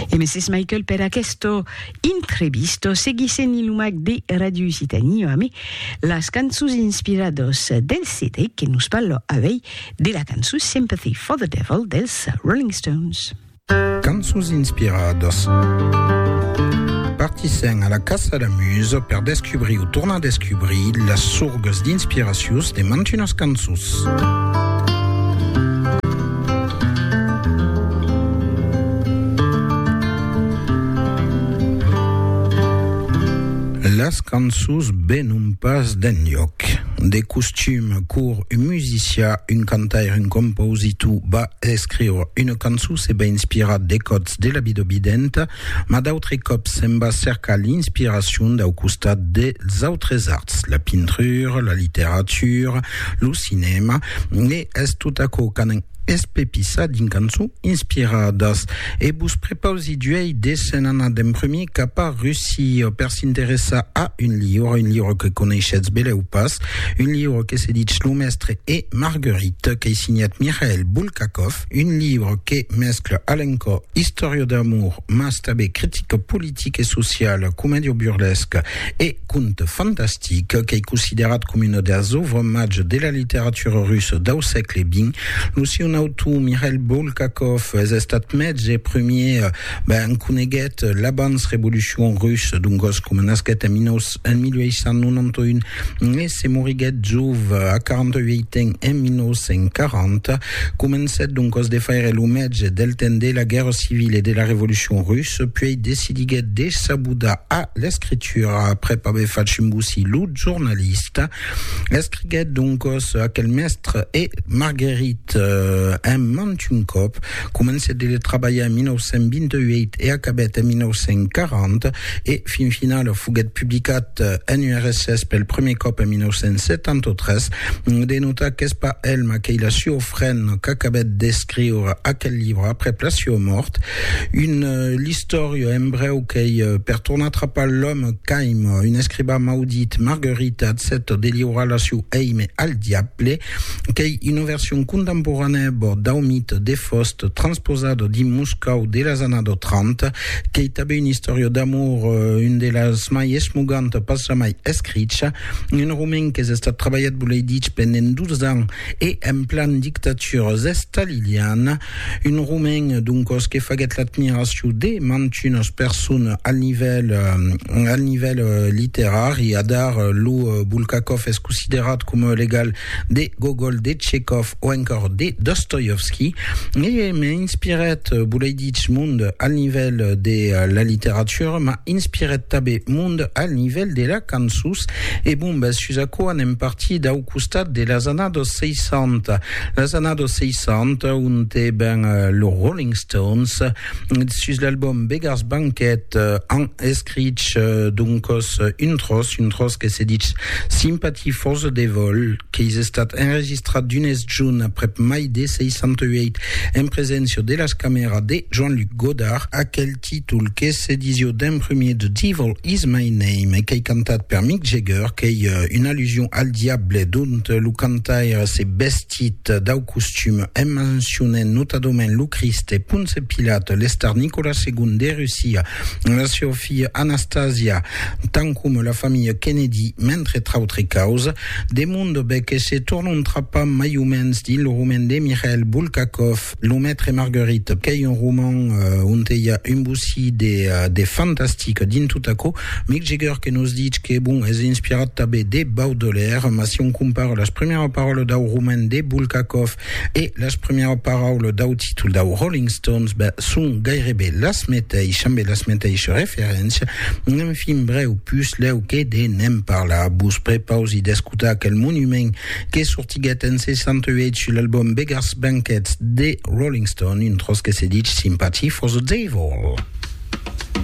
E Mrs. Michael per aquesto intrebisto seguisse ni lo mac de Radio Usitania ame las canços inspirados del CD que nos parlo avei de la canço Sympathy for the Devil dels Rolling Stones. Cançons inspiradas. Partissèm a la caça la musa per descubrir o tornar descubrir las sorgas d'inspiracions de mantunas cançons. Las cançons venon pas d'enlhòc. De costum, cor un musicià, un cantaire, un compositor va escriure una cançon se va inspirar de còts de la vida videnta, Mas d'autres còps se'n va cercar l'inspiracion dau costat dels autres arts, la pintura, la literatura, lo cinèma, e es tot aquò qu'anam espepissar dins cançons inspiradas. E vos prepausi d'uèi de se'n anar d'en prumèr cap a Russia per s'interessar a un liure, un liure que coneishetz belèu pas, un liure que se ditz Lo Mestre e Marguerite, qu'ei signat Mikhail Bulgakov. Un libre que mescla a l'encò istòria d'amor mas tanben critica politica e sociala, comèdia burlesca e conte fantastic. Qu'ei considerat coma una deas òuvres màger de la literatura russa dau sègle xx, lo siun autor, Mikhail Bulgakov, es estat mètge e prumièr ben coneguèt l'abans-revolucion russa, dongos coma nasquèt en 1891, e se moriguèt jove, a 48 ans, en 1940. Comencèt doncas de faire lo mètge del temps de la Guèrra Civila e de la Revolucion Russa, puèi decidiguèt de s'abudar a l'escritura aprèp aver fach embosir lo jornalista. Escriguèt doncas Aquel mèstre e Marguerite en mantun còp. Comencèt de trabalhar en 1928 e acabèt en 1940, e fin finala foguèt publicat en URSS pel prumèr còp en 1973. De notar qu'es pas el maquelha siofren qu'acabèt d'escriure aquel libre aprèp la siua mòrt. Un l'istòria en brèu qu'ei per tornar trapar l'òme qu'aima un escribà maudit, Marguerite, accèpta de liurar la siu èime al diable. qu'ei una version contemporanèa bòrd dau mite de Faust transposada dins Moscòu de las annadas 30, qu'ei tanben una istòria d'amor, un de las mai esmogantas pas jamai escricha, un romen qu'es estat trabalhat, volei dich, pendent 12 ans e en plan dictatura estaliliana. Un romain, doncos, que faguèt l'admiracion de mantunas personas al nivèl, al nivèl literari. Adar, lo Bulgakov es considerat coma l'egal de Gogol, de Tchekov o encòr de Dostoievski. E m'inspirèt, volei dich, mond al nivèl de la literatura, m'a inspirèt tanben mond al nivèl de la cançons. E bon, bèth, sus aquò anem partir dau costat de las annadas 60, las annadas 60 onte ben los Rolling Stones sus l'album Beggars Banquet an escrich doncos un tros, un tros que se ditz Sympathy for the Devil, qu'eis estat enregistrat d'unes junt aprèp mai de 68 en preséncia de las camèras de Jean-Luc Godard, aquel títol que se disió d'en prumèr The Devil Is My Name e qu'ei cantat per Mick Jagger, qu'ei una allusion al diable, dont lo cantaire se vestit dau costum en mencionent notadament lo Crist e Ponce Pilat, l'estar Nicolas segon de Russia, la siá filha Anastasia, tant coma la familha Kennedy, mentre trautre causes. De Mondobé que se tornontrapam mai o mens dins lo roman de Mikhail Bulgakov. Lo Maitre Marguerite, qu'ei un roman onte i a un bocí de fantastic dins tot aquò. Mick Jagger que nos ditz que, bon, es inspirat tanben de Baudelaire, mas si on compara las primièras paraulas dau roman de Bulgakov e las primièras paraulas dau títol dau Rolling Stones, ben, son gaireben las meteishas, ambe las meteishas referéncias. Enfin, brèu, pus lèu que de ne'n parlar, vos prepausi d'escotar aquel monument que sortiguèt en 68 l'album Beggars Banquet de Rolling Stone, un tròç que se dich Sympathy for the Devil.